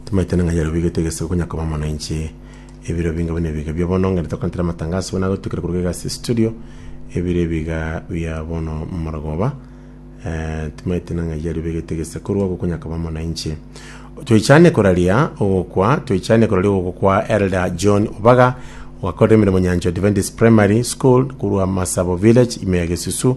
tomaete ng'a yero bigete egese konya koba mono inche ebiro binga buna ebiga bia bono ngende tokontera matangaso buna gotukire kuruka egasi studio ebiro ebiga bia bono morogoba eh, timaete ng'a yero bigete egese korwa ogo konya koba mono inche toichane koraria ogokwa toichane koraria ogokwa elder john obaga ogakorera emirimo nyancho adventist primary school korwa masabo village ime ya gesusu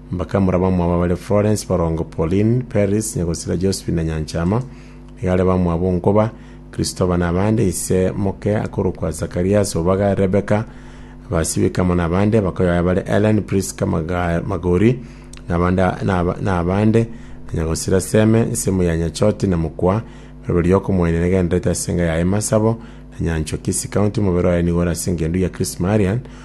Mbakamura bamwabo bare Florence, borongo Pauline, Paris, nyagosira Josephine na Nyanchama, igare bamwabo nkoba, Christopher na abande, ise moke akorokwa Zacharias, Obaga, Rebecca, abasibike amo nabande, bakoyoya bare Ellen, Prisca, Maga- Magori, nabande naba- nabande, na nyagosira Seme, nsemo ya Nyachoti na mokwa, rirobe riokomoenia negenderete ase enga yaye Masabo, na Nyanchwa, Kisii County, omobere oye nigo ore ase engendu ya Chris Marian,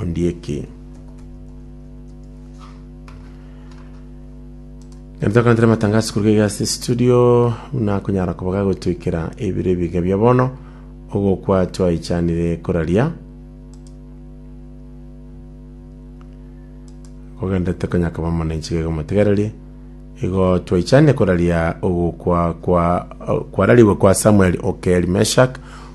Ondieki. Ntokantere matangazo kuruga iga ase studio buna konyara koba gagotoikera ebiro ebiga bia bono ogokwa twaichanire koraria kogenda tekonya koba mono enchiga iga motegererie igo twaichanire koraria ogokwa kwa kwararigwe kwa samuel okeli meshak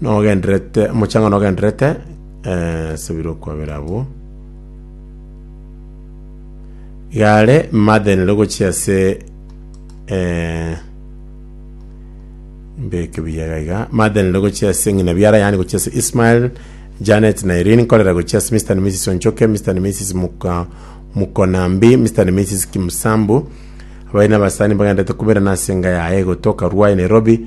Nogenderete, omochango nogenderete, eh, subira okwabera abwo. Igare madenere gochia ase eh, mbeke biyaga iga madenere gochia ase ng'ina biara yani gochia ase Ismael Janet na Irene nkorera gochia ase Mr. and Mrs. Onchoke Mr. and Mrs. Muka Mukonambi Mr. and Mrs. Kimsambu abari n'abasani bagenderete kuberana ase enga yaye gotoka Ruai Nairobi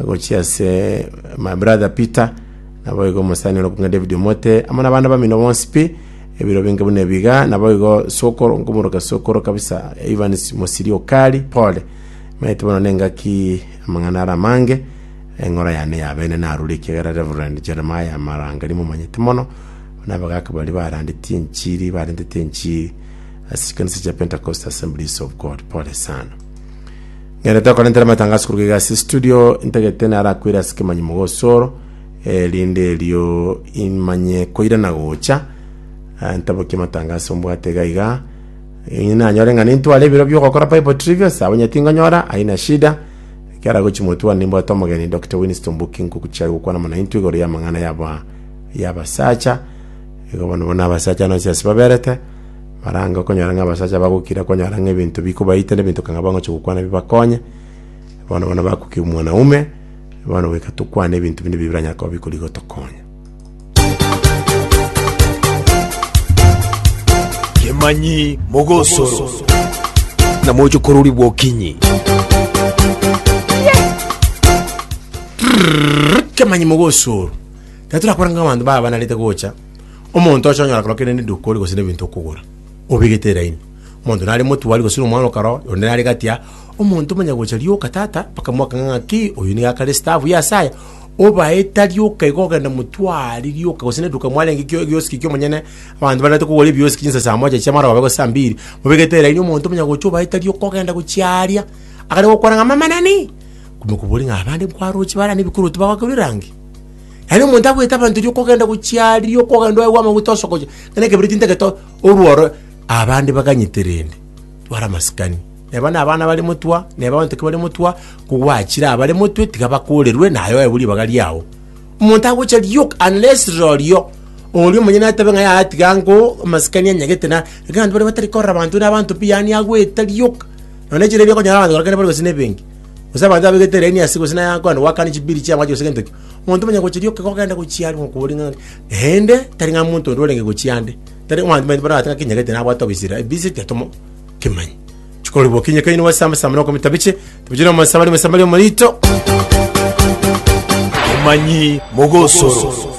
Agochia ase my brother Peter, naboigo omosani ore okong'a David Omote, amo nabande bamino bonsi pi, ebiro binge buna ebiga, naboigo sokoro, nkomoroka sokoro kabisa, Evans Mosiri Okari, pole, maete bono nengaki amang'ana are amange, eng'ora yane yabene narure ekiagera Reverend Jeremiah Marangari momanyete mono, buna abagaaka baria barandeti enchiri, barentete enchiri ase chikanisa chia Pentecostal Assemblies of God, pole sana. Nere tokorentera amatangaso koruga iga ase studio, ntagete naro akoire ase kemanyi mogosoro, eh, rinde erio imanye koira na gocha, eh, ntabokie amatangaso mbwate iga iga, inye nanyore ng'a nintware ebiro biogokora Bible Trivias, abo onye tingonyora, haina shida, ekiara gochi motwani nimbwate omogeni Doctor Winston Mbuki nkoguchia gokwana mono intwe igoro y'amang'ana y'aba y'abasacha, igo bono bono abasacha nonsi ase baberete. barange okonyora ng'a abasacha bagokira konyora ng'a ebinto bikobaita na ebinto kang'a bangochi gokwana bibakonye, bono bono bakukia omwanaume, bono goika tokwane ebinto binde ebi biranyare koba bikorigia gotokonya. Kemanyi mogosoro na moche korori bwokinyi. Kemanyi mogosoro. Tari torakora ng'a abanto baba banarete gocha. Omonto ocha onyora korokire nende edukori gose nebinto okogora, obegete eraini. Omonto nare motwari gose nomwana okaro, onde nare gatia, omonto omanya gocha rioka tata, bakamwaka ng'a ng'aki, oyo nigo akare stavu ya asaya, obaeta rioka iga ogenda motwari rioka gose neduka mwarenge kio egioski kia omonyene, abanto barente kogora ebioski chinsa saa moja chia maroba gose saa mbiri, mobegete eraini omonto omanya gocha obaeta rioka ogenda gochiaria, akare gokwana ng'a mama nani? Komokoboria ng'a abande nkwaroche bare aa nebikorwa tibagoakerwa erangi? Yaani omonto agoeta abanto erio okogenda gochia aria, okogenda oegwa amaguta osokochia, ng'a ekebereti ntagete orworo, abande baganyete rende, twara amasikani. Neba na abana bare motwe, neba abanto ekebare motwe, kogwachire abare motwe tiga bakorerwe naye oegwe ribaga riao. Omonto agocha rioka unless rorio oria omonyene atabe ng'a yaya tiga ngo amasikani anyagete na, iga abanto baria batari korora abanto na abanto pi yaani agoeta rioka. Nonya chiribi okonyora abanto baria kare mbare gose na ebenki. Gose abanto babegete elaini ase gose naye akoenda goakana chibiri chi'amache gose gento ki. Omonto omonyene gochiria oke kogenda gochia aria okobori ng'a naende tari ng'a omonto onde orenge gochia ande. Tari abanto baito barabwate ng'a kinyegete nabwate obisire, ebise tiatomo kimanya. Chikori bokinye kaini gose amo saa monoka mitabiche, tabiche na omosa bari omosa bari omorito. Omanyi mogosoro.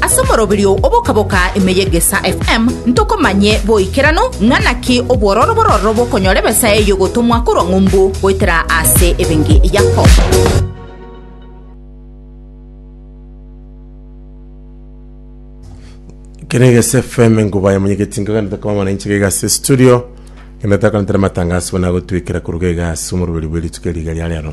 Ase omoroberio oboka-boka ime y'Egesaa FM ntokomanye boikeranu ng'a naki obwororo bororo bokonyora ebesa eye y'ogotomwa korwa ng'umbu goetera ase ebenge Yakobo. Kene gese FM ngubaye mwenyekiti nkaganete kama mana inche gega se studio kene takantere matangazo bona gotwikira kuruga gega ase omoruberi bwe rituko riga ria rero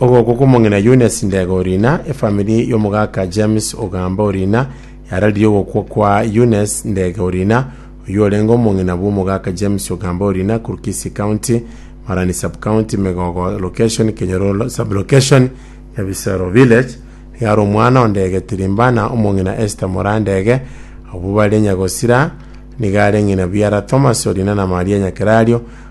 Ogoko kw'omong'ina Eunice Ndega Orina, efamiri y'omogaka James Ogamba Orina yararirie ogokwa kwa Eunice Ndega Orina, oyio orenge omong'ina bw'omogaka James Ogamba Orina korwa Kisii County, Marani Sub-County, Megogo Location, Kenyoro Sub-Location, Nyabisero Village. Nigo are omwana o Ndege Tirimbana, omong'ina Esther Moraa Ndege, abwo bare Nyagosira, nigo are ng'ina biara Thomas Orina na Maria Nyakerario,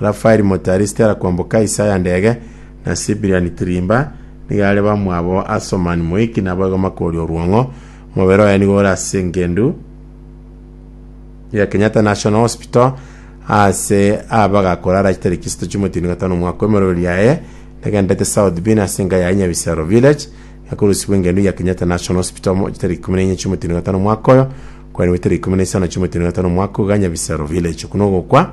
Rafaeli moto Aristera kwamboka Asia ya ndege, na Sibiliani Tirimba, nigo are bamwabo a Somani Moiki na Boigo Makori Orwong'o. Omobere oye nigo ore ase engendu ya Kenyatta National Hospital ase aba bagakora arache tariki isatu chimweti na gatano omwaka emorweri yaye negenderete South Bin ase enka yaye Nyabisero Village yakorusibwa engendu ya Kenyatta National Hospital mo tariki ikumi na enye chimweti na gatano omwaka oyo kwarengwe tariki ikumi na isano chimweti na gatano omwaka iga Nyabisero Village. Okwo nogokwa